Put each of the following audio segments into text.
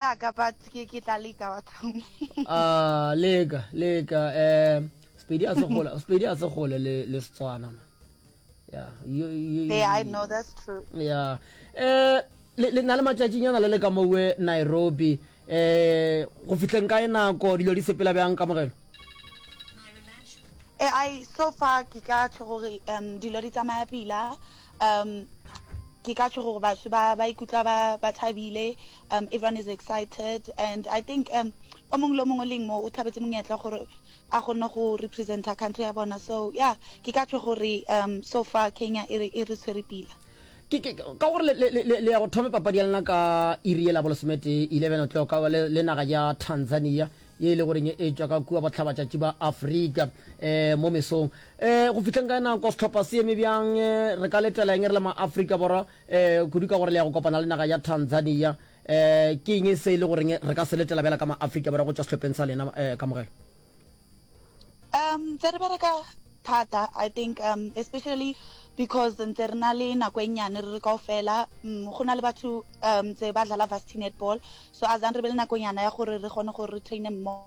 ya ka but ke ke tla leka wa thumi ah leka leka eh spedi a se gole spedi a se gole le le setswana yeah you, you, hey, i know that's true yeah eh le na le matšatšinyana le le ka mowe nairobi eh go fitlheng ka e nako dilo di sepela bjang ka mogelo eh i so far ke ka tlo gore um dilo di tsamaya pila um ke ka tlo gore batho ba ba ikutla ba ba thabile Um, everyone is excited and I think um, o mongwe le o mongwe o leng mo o tlhabetse monyetla gore a kgone go representa country ya bona so yeah ke ka tlo gore um, so far kenya e re e re tshwere pila Ke- ke- ke- ka gore le- le- le le- le ya go thome papadi ya lena ka iri e labolesomete 11 o'clock ka le le naga ya tanzania ye e le goreng e tšwa ka kua botlhabatšatši ba afrika um mo mesong um go fihleng ka nako setlhopha se eme bjang eh, re ka letela eng re le maaforika borwa um kudu ka gore le ya go kopana le naga ya Tanzania. um Ke eng se e le goreng re ka se letela bjala ka ma-Afrika Borwa go tšwa sehlopheng sa lena? um Kamogelo. Um, ntse re bereka thata I think um especially because ntse re na le nako e nyane re re kaofela um go na le batho um tse ba dlala varsity netball so as re be le nako nyana ya gore re kgone gore re traine mmogo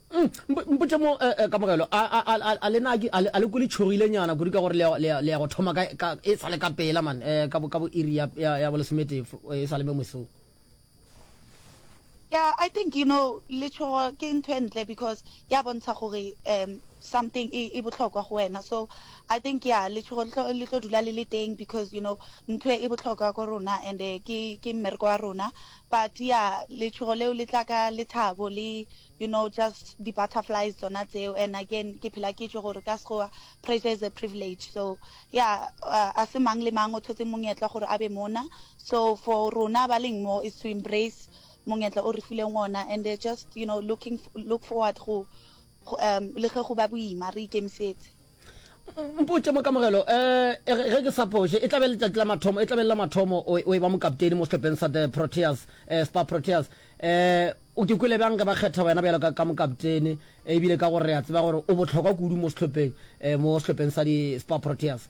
Mm, mpotše mo, eh, eh, kamogelo, a, a, a, a, a le na ke, a le, a le kwe le tšhogile nyana kudu ka gore le, ya- le, ya- le ya go thoma ka, ka, e sa le ka pela man, eh, ka bo, ka bo iri ya, ya, ya bolesomete, f- eh, e sa le mo mosong. yeah i think you know letshogo ke ntho e ntle because ya bontsha gore um something e e botlhokwa go wena so i think yeah letshogo le tlo- le tlo dula le le teng because you know ntho e e botlhokwa ko rona and eh, ke ke mmereko wa rona but yeah letshogo leo le tla ka lethabo le you know just di butterflies tsona tseo and again ke phela ke tšo gore ka sekgowa pressure is a privilege so ya a se mang le mang o thotse monyetla gore a be mona so for rona ba leng mo is to embrace monyetla o re fileng ona and they're just you know looking look forward go um le ge go ba boima re ikemisetse mpotše mo kamogelo um ge ke sa phoše e tlabe letšatši la mathomo e tlabe le la mathomo o e ba mokapteini mo sehlopheng sa the proteas um spa proteas um o ke kwele bjang ge ba kgetha wena bjalo ka mokapteini ebile ka gore re a tseba gore o bohlokwa kudu mo sehlopheng um mo sehlopheng sa di spa proteas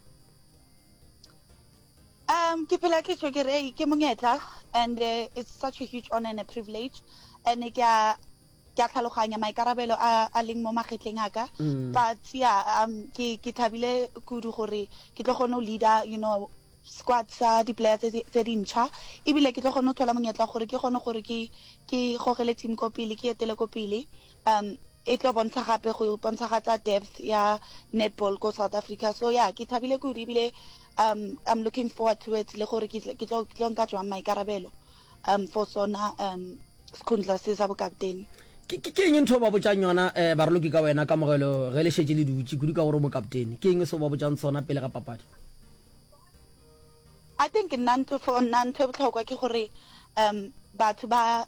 um ke phela ke tšho ke re ke monyetla and it's such a huge honor and a privilege and ke a Ke a tlhaloganya maikarabelo a a leng mo magetleng a ka, ka tsea um, ke, ke thabile kudu gore ke tlo kgona go leader, you know, squad sa di-player tse, tse dintšha, ebile ke tlo kgona go thola monyetla wa gore ke kgone gore ke, ke gogele team ko pele, ke etele ko pele. Um, e tlo bontsha gape go bontshagatsa depth ya netball ko South Africa. So yeah, ke thabile kudu ebile um, I'm looking forward to it le gore ke, ke tlo, ke tlo nka jwang maikarabelo. um for sona um sekhundla se sa bokaptene ke eng ntho ba botšang yona um eh, baroloki ka wena kamogelo ge le šetse le dutše kudu ka gore o mokaptene ke eng se ba botšang sona pele ga papadi i think nna ntho for nna ntho e botlhokwa ke gore um batho ba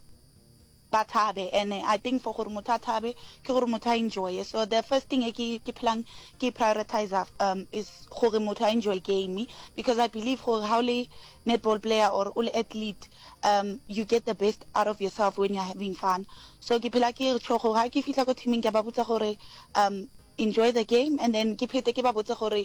ba thabe and I think for gore motho a thabe ke gore motho a enjoye so the first thing e ke phelang ke e prioritiser um is gore motho a enjoye game because I believe gore ha o le netball player or o le athlete um you get the best out of yourself when you're having fun so ke phela ke re gore ha ke fihla ko teaming ke ba botsa gore um enjoy the game and then ke phete ke ba botse gore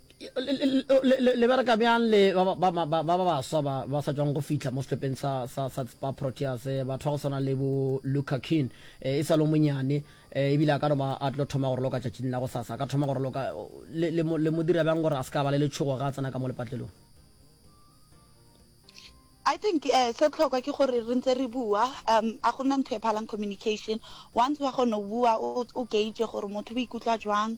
Le bereka bjang le ba ba baswa ba ba sa tšwago go fihla mo sehlopheng sa sa sa ba Proteas? Batho ba go swana le bo Luca Keane e sa le monyane ebile a ka no ba a tlo thoma go roloka tšatšing la go sasa, a ka thoma go roloka. Le le le mo dira bjang gore a se ka ba le letšhogo ga a tsena ka mo lepatlelong? I think eh se tlhokwa ke gore re ntse re bua um a gona ntho e phalang communication once wa kgona go bua o gauge gore motho o ikutlwa jwang